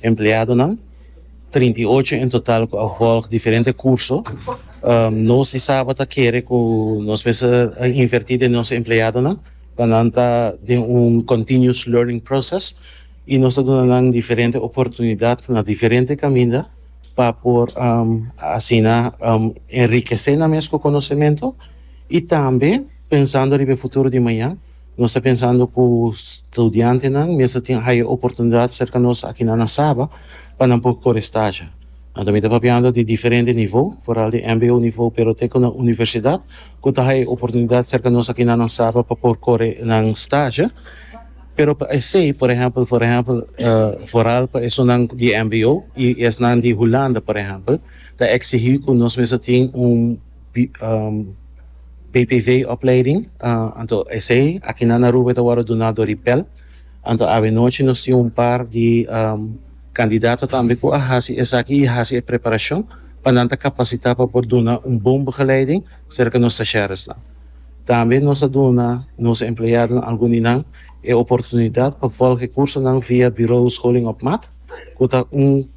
empleadonan, trinta i ocho en total cu a volg diferente curso. Nos di Saba ta kere cu nos mester inverti den nos empleadonan pa nan ta den un continuous learning process y nos ta duna nan diferente oportunidad na diferente caminda pa por asina enrikece nan mes cu conocemento y tambe pensando riba e futuro di maña. Nos ta pensando cu studiantenan mes ta tin haya oportunidad cerca nos aki na Saba pa nan por core staja. Nan tambe ta papiando di diferente nivo, vooral di mbo nivo pero te cu na universidad cu ta haya oportunidad cerca nos aki na Saba pa por core nan staja. Pero pa esey, por ehempel, por ehempel, vooral pa esunnan di mbo y esnan di Hulanda, por ehempel, ta exigi cu nos mes ta tin un. BPV opleiding anto esey akinan na Aruba e ta wòrdu duná dor di pèl anto awenochi nos tin un par di kandidato tambe ku a hasi esaki i hasi e preparashon pa nan ta kapasitá pa por duna un bon begeleiding serka nos stasheresnan tambe nos ta duna nos empleadonan algun di nan e oportunidat pa vòlg e kursonan via Bureau Scholing op Maat ku ta un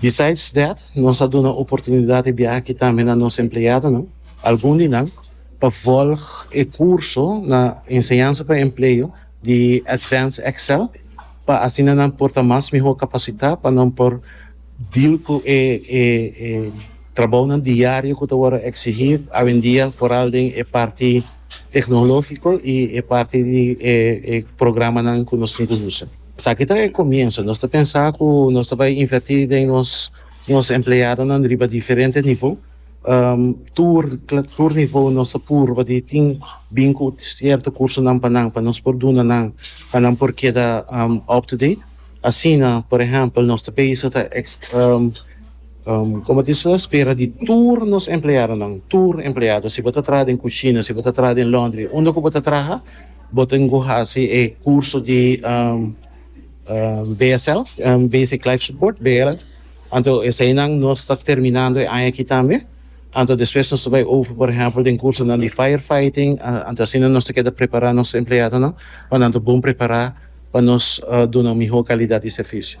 Besides that, nos a duna oportunidat di biaha aki tambe na nos empleadonan, algun di nan pa volg e kurso na Enseñansa pa Empleo di Advanced Excel pa asina nan por ta mas mihó kapasitá pa nan por deal ku e trabounan diario ku ta wòrdu eksigí awendia foral den e parti Tecnologico y e parti di e programanan cu nos tin cu usa. Esaki ta e comienzo. Nos ta pensa cu nos ta bay inverti den nos empleadonan riba diferente nivo. Tur tur nivo nos ta purba di tin bin cu cierto cursonan pa nan pa nos por duna nan pa nan por keda up to date. Asina por ehempel nos ta bisa ta Como tin so espera di tur nos empleadonan, tur empleado, si bo ta traha den cushina, si bo ta traha den laundry, unda cu bo ta traha, bo tin cu haci e curso di BSL, Basic Life Support, BLS. Anto eseinan nos ta terminando e aña aki tambe. Anto despues nos ta bay over, por ehempel, den cursonan di fire fighting. Anto asina nos ta keda prepara nos empleadonan pa nan ta bon prepara pa nos duna un miho calidad di servicio.